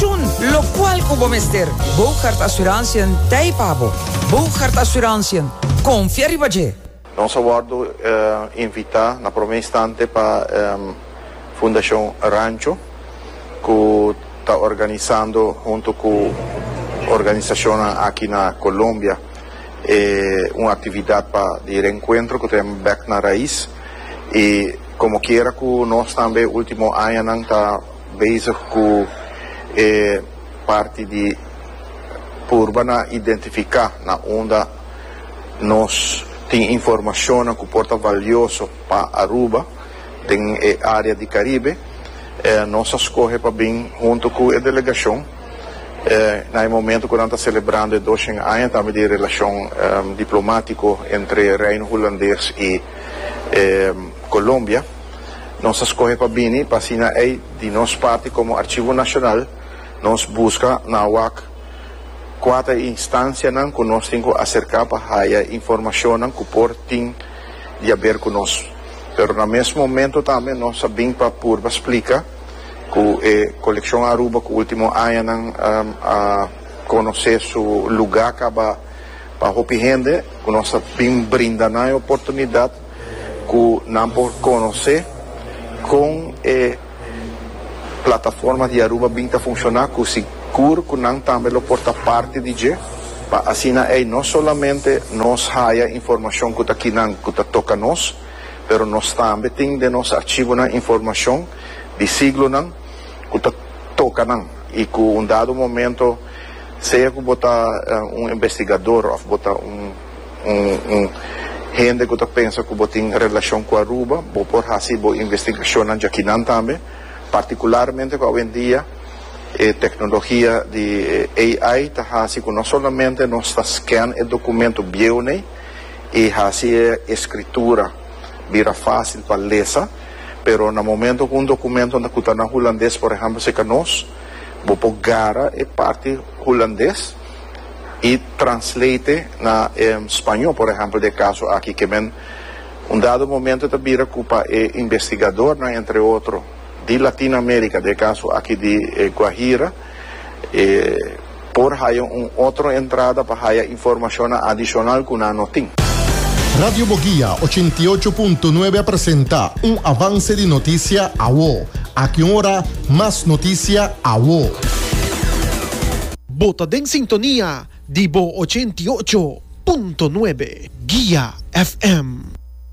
Tjun, locual cu bo mester. Bougaard Assurantiën ta ei pa bo. Bougaard Assurantiën, confia riba dje! Nos a wordo invita na prome instante pa Fundacion Rancho cu ta organisando hunto cu organisacionnan aki na Colombia e un actividad pa di reencuentro cu ta yama Back na Raiz y como kiera cu nos tambe ultimo añanan ta bezig cu e parti di purba na identifica na unda nos tin informacionnan cu por ta valioso pa Aruba den e area di Caribe. Nos a scoge pa bin hunto cu e delegacion na e momento cu nan ta celebrando e doshen aña tambe di e relacion diplomatico entre Reino Hulandes y Colombia. nos a skohe pa bini pa asina ei di nos parti komo Arshivo Nashonal nos buska na wak kua ta e instansianan ku nos tin ku aserká pa haya e informashonnan ku por tin di haber ku nos pero na mes momento tambe nos a bin pa purba splika ku e Kolekshon Aruba ku último añanan a konosé su lugá kaba pa hopi hende ku nos a bin brinda nan e oportunidat. cu nan por conoce con e plataforma di Aruba bin ta funciona cu sigur cu nan tambe lo por ta parti di dje pa asina ey no solamente nos haya informacion cu ta kinan cu ta toca nos pero nos tambe tin den nos archivonan informacion di siglonan cu ta toca nan y cu un dado momento sea cu bo ta un investigador of bo ta un un un hende ku ta pensa ku bo tin relashon ku Aruba bo por hasi bo investigashonnan djakinan tambe partikularmente ku awendia e teknologia di AI ta hasi ku no solamente nos ta scan e dokumentu bieu'nei i hasi e eskritura bira fásil pa lesa pero na momento ku un dokumentu ku ta na hulandes por ehèmpel serka nos bo por gara e parti hulandes. y translate na e spaño por ehempel de e caso aki ke men un dado momento ta bira cu pa e investigadornan entre otro di Latin America de e caso aki di e Guajira e por haya un otro entrada pa haya informacionnan adicional cu nan no tin. Radio Boguia ochenta i ocho punto nuebe a presenta un avance di noticia awo. Aki un ora mas noticia awo. Bo ta den sintonia di bo ochenta i ocho punto nuebe, Guia FM.